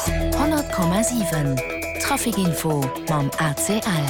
100,7 Traficinfo mam ACL.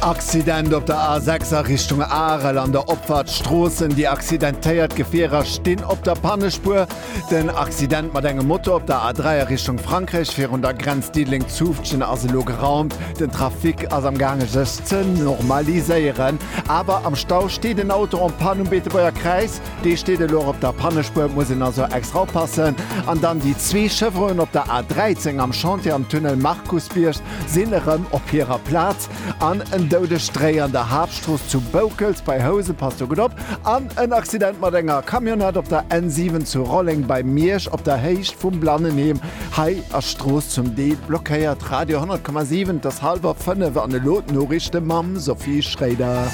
Accident op der A6 a Richtung Arel an der Opfahrt Stroossen. Déi accidentéiert Gefierer stinn op der Pannespuer. Den Accident mat engem Moto op der A3 a Richtung Frankräich virun der Grenz Diddeleng-Zoufftgen ass elo geraumt. Den Trafic ass am gaange sech ze normaliséieren. Awer am Stau steet en Auto en Panne um Beetebuerger Kräiz. Dee steet elo och op der Pannespuer, muss een also extra oppassen. An dann déi zwee Chevronen op der A 13 am Chantier am Tunnel Markusbierg sinn erëm op hirer Plaz. An en Doudesstréi an der Haaptstrooss zu Boukels bei Housen, passt do gutt op. An en Accident mat enger Camionnette op der N 7 zu Rolleng bei Miersch op der Héicht vum Blannenheem. Hei ass d'Strooss zum Deel blockéiert. Radio 10,7, et ass hallwer fënnef an elo d'Noriichte mam Sophie Schréider.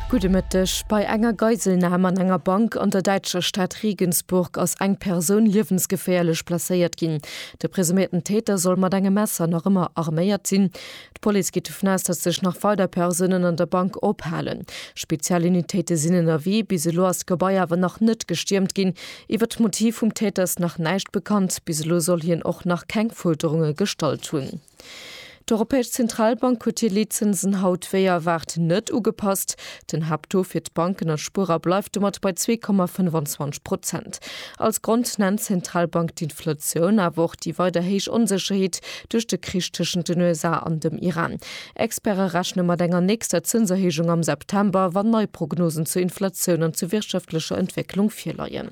Gudde Mëtteg, Bei enger Geiselnam an enger Bank an der däitscher Stad Regensburg ass eng Persoun liewensgeféierlech blesséiert ginn. De presuméierten Täter soll mat engem Messer nach ëmmer arméiert sinn. D'Police geet dovun aus, datt sech nach weider Persounen an der Bank ophalen. Spezial Unitéite sinn ënnerwee. Bis elo ass d'Gebai awer nach net gestiermt ginn. Iwwer d'Motiv vum Täter ass nach näischt bekannt. Bis elo soll hien och nach keng Fuerderunge gestallt hunn. D'Europäesch Zentralbank huet hir Leetzinsen haut wéi erwaart net ugepasst. Den Haapttaux fir d'Banken a Spuerer bleift domat bei zwee Komma 25 Prozent. Als Grond nennt d'Zentralbank d'Inflatioun, awer och déi weider héich Onsécherheet duerch de Krich tëschent den USA an dem Iran. Experte rechne mat enger nächster Zënserhéijung am September, wann nei Prognosen zur Inflatioun an zur wirtschaftlecher Entwécklung virleien.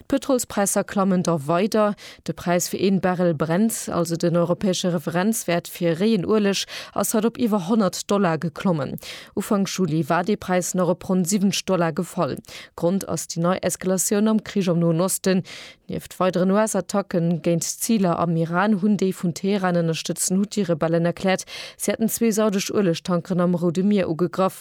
D'Pëtrolspräisser klammen da weider. De Präis fir een Barrel Brent, also den europäesche Referenzwäert fir réien Ueleg, ass haut op iwwer 100 Dollar geklommen. Ufank Juli war dee Präis nach op ronn 70 Dollar gefall. Grond ass déi nei Eskalatioun am Krich am Noen Osten. Nieft weideren US-Attacken géint Ziler am Iran hunn déi vun Teheran ënnerstëtzten Huthi-Rebellen erkläert, si hätten zwee saudesch Uelegtankeren am Roude Mier ugegraff.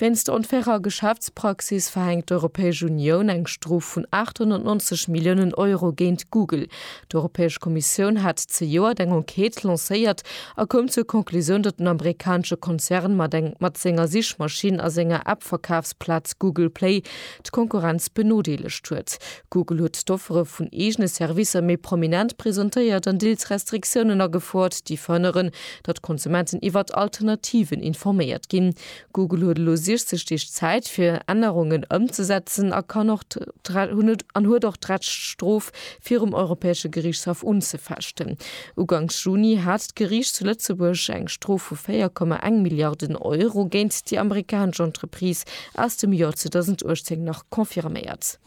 Wéinst der onfairer Geschäftspraxis verhänkt d'Europäesch Unioun eng Strof vun 890 Milliounen Euro géint Google. D'Europäesch Kommissioun hat zejoert eng Enquête lancéiert a koum zur Conclusioun, datt den amerikanesche Konzern mat mat senger Sichmaschinn a senger App-Verkafsplaz Google Play d'Konkurrenz benodeelegt huet. Google huet d'Offere vun eegene Servicer méi prominent presentéiert an Deals Restriktiounen agefouert, déi verhënneren, datt d'Konsumenten iwwert Alternativen informéiert ginn. Google huet elo 60 Deeg Zäit fir Ännerungen ëmzesetzen a kann och hunn et an huet och d'Recht d'Strof virum Europäesche Geriichtshaff unzefechten. Uganks Juni hat d'Geriicht zu Lëtzebuerg eng Strof vu 4,1 Milliarden Euro géint déi amerikanesch Entreprise aus dem Joer 2018 nach confirméiert.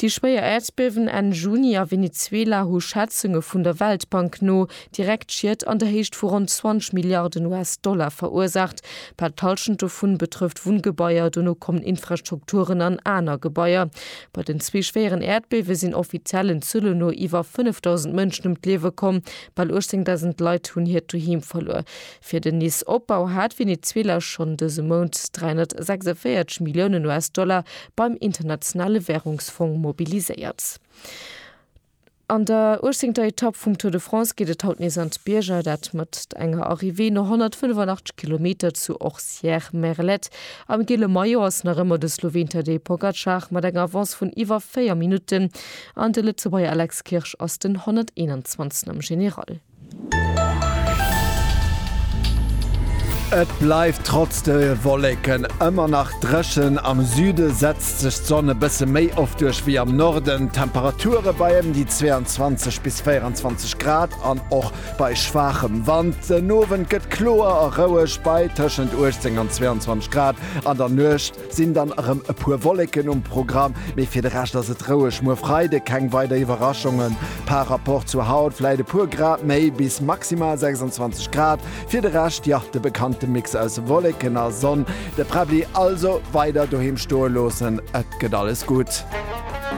Déi schwéier Äerdbiewen Enn Juni a Venezuela hu Schätzunge vun der Weltbank no direkt Schied an der Héicht vu ronn 20 Milliarden US-Dollar verursaacht. Bal d'Hallschent dovun betrëfft Wunngebaier, dono kommen Infrastrukturen an aner Gebaier. Bei den zwee schwéieren Äerdbiewe sinn offiziellen Zuele no iwwer 5.000 Mënschen ëm d'Liewe komm. Bal 18.000 Leit hunn hiert Doheem verluer. Fir den Nice-Opbau hat Venezuela schonn dëse Mount 346 Milliounen US-Dollar beim Internationale Wärungsfong mobiliséiert. An der 18. Etapp vum Tour de France geet et haut nees an d'Bierger, dat mat enger Arrivée no 185 Kilometer zu Orcières-Merlette. Am gele Maillot ass nach ëmmer de Sloween Tadej Pogacar mat enger Avance vun iwwer 4 Minutten an de Lëtzebuerger Alex Kirsch ass den 121. am General. Et bleift trotz de Wolleken ëmmer nach dréchen, am Süde setzt sech d'Sonn e bësse méi oft duerch wéi am Norden. D'Temperature bei ëm déi 22 bis 24 Grad an och bei schwaachem Wand. Den Owend gëtt kloer a roueg bei tëschent 18 an 22 Grad, an der Nuecht 't sinn dann erëm e puer Wolleken um Programm, mee fir de Rescht ass et roueg. Muer Freide keng weider Iwwerraschungen par Rapport zu haut, vläit e puer Grad méi bis maximal 26 Grad. Fir de Rescht, jo, de bekannte Mix aus Wolleken a Sonn. De Präbbli also weider doheem stoe loossen, et gëtt alles gutt.